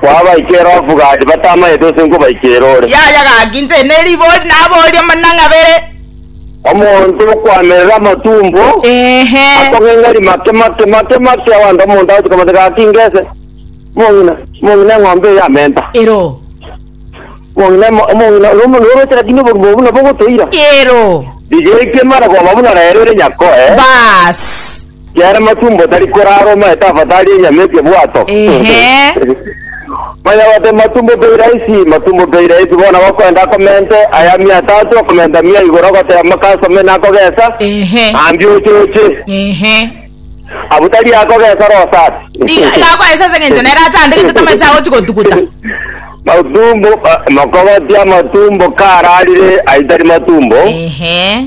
Kwabaika ere ofuga ati, Batamanyete ose nkobaika ere ore. Yaya gaki inche ne ribori naboria amanang'a abere. Omonto okwamerera amatumbo, Ehe. akong'eng'ari make make make make, abanto omonto agochika mate gaki ngese, Omong'ina, omong'ina eng'ombe eye yamenta. Ero. Omong'ina, omo- omong'ina, oro omonto oroche lakini obogima obo buna bogotoira. Ero. Rigetie mare koba buna rero ere nyakoe. Baas. Kiare Matumbo tari korara omaye tafatari enyama eria bwato. Ehe. Manya gote Matumbo pei raisi, Matumbo pei raisi bono gokwenda akomente aya mia tatu akomenta mia igoro goteba makasome nakogesa Ehe. ambia oche oche. Ehe. Abu tari akogesa rosa ase. Iga iga akoesa ase eng'encho nere achandegete tamache agochi gotuguta. Matumbo, eh, mokogoti amatumbo kararire aitari matumbo. Ehe.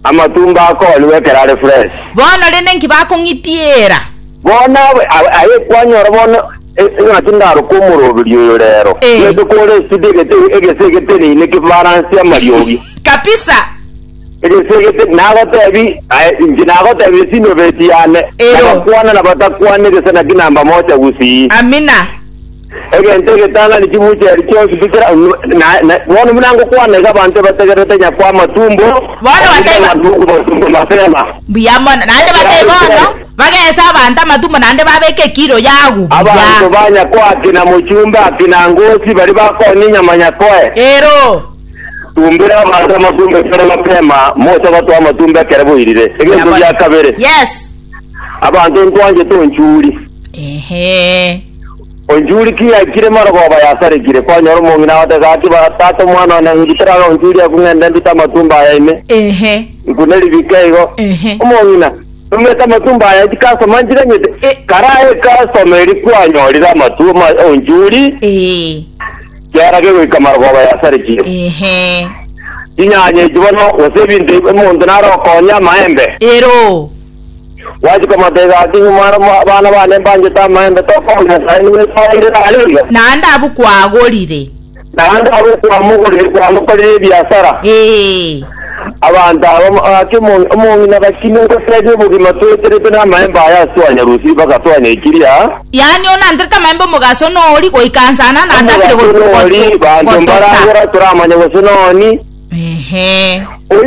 Amatumbo akooniwe ekero are fresh. Bono rende inki bakong'itiera? Bono abe a- aye kwanyora bono e- eng'aki ndaroke omoroberi oyo reero. Eh. Gete kore esidi egete egese egeteneine kifaransi amariogi. Kabisa. Egese egete nagotebi aye inche nagotebi ase inobeti yane. Ero. Nabakwana nabatakwana egese naki namba moja gusii. Amina. Egento egetang'ani chimuche erio chionsi tikira, na bono buna ngokwana iga abanto ebategererete nyakwa amatumbo, Bono bataiba- Nabwo abanto okobatumba mapema. Mbuya mono. Naende batebe bono, Bagese abanto amatumbo naende babeke ekiro y'agwo Abanto buya. ba nyakwa akina mochumbe akina ngosi baria bakonya enyama nyakoe. Ero. Tumbera abanto amatumbo ekero mapema, moche gotoa amatumbo ekero boirire. Egento gia kabere, Yes. abanto ntwanchete onchuri. Ehe. Onchuri ki yaikire marogoba yasarekire? Kwanyora omong'ina agote gaki, Tata omwana one, inki teraga onchuria ekwe ng'ende ndute amatumbo aya ime? Ehe. Iku neribike igo. Ehe. Omong'ina, Nomete amatumbo aya inki kasoma nchiganyete? E- Kara aye kasoma eri kwanyorire amatu ma onchuri, Ee. kiarage goika marogoba yasarekire. Ehe. Chinyanya echi bono, gose ebinto ebi omonto nare okonya amaembe. Ero. Gwachika matega ake nyuma aro abana bane mbanchete amaembe, tokoba Nyasae nigo esoeire nare iga. Naende abwo kwagorire. Naende abwo kwamogorire kwamokorire ebiasara. Ee. Abanto aba gaki omong'ina gaki nogoteebia obogima toeterete namaembe aya ase twanyarusirie mpaka twanyaikiri. Yaani one anterete amaembe omogaso nori goika nsana nachakire gotoka. Omogaso nori, banto mbaragora toramanya gose noni. Ehe.